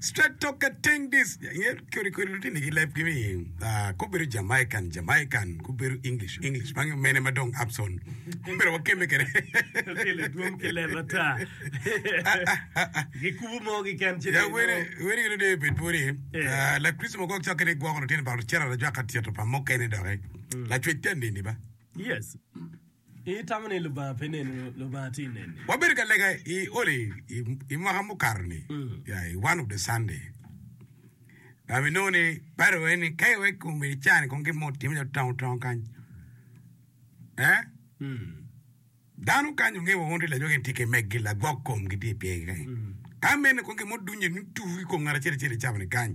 Straight talk at teng dis. Yer kori kori lutini ki lab kimi. Ah, kubedo Jamaican, Jamaican, kubedo English, English. Mangi mene ma dong Abson. Kubedo wakeme kede. Kele dwong ki leb ata. Gikubo mo gi ken ci. Ya wene, wene gino de bed pwode. Eh. Ah, la Kristo mo gok cok kede gwoko lutini ba lutera da jwaka tito pa mokene doke. Lacwec tani ni ba. Yes. Itamo ni Lubanga pe neni? Lubanga tye neni. Wabedo ka lega i oli i mwaka mukato ni yeah i one of the Sunday dok bi nongo ni Bible waci ni ka iweko kom i caa ni kong gin mo otimme ci otongo tongo kany eh dano kany onge wa wun tye lajwa gin tye ki meg gi lagwok kom gi tye i pyegi kany ka mene kong gin mo dunye ni tur i kom ngat acel acel i caa ni kany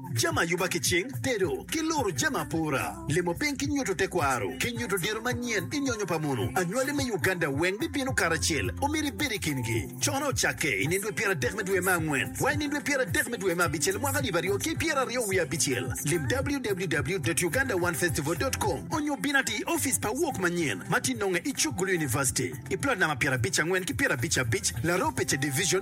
jami ayuba ki cing, tedo, ki luru jami apora, limo piny ki nyuto tekwaro, ki nyuto diro manyen i nyonyo pa munu. Anywali me Uganda weng bibino karacel, omyero ibed i kingi. Cono ocakke i nindwe pyer adek me dwe me angwen wa i nindwe pyer adek me dwe me abicel mwaka alip aryo ki pyer aryo wiye abicel. Lim www.ugandaonefestival.com onyo bin ati i ofice pa Wok Manyen ma tye nonge i Chuk Gulu University i plot namba pyerabic angwen ki pyerabic abic, Laropeche Division,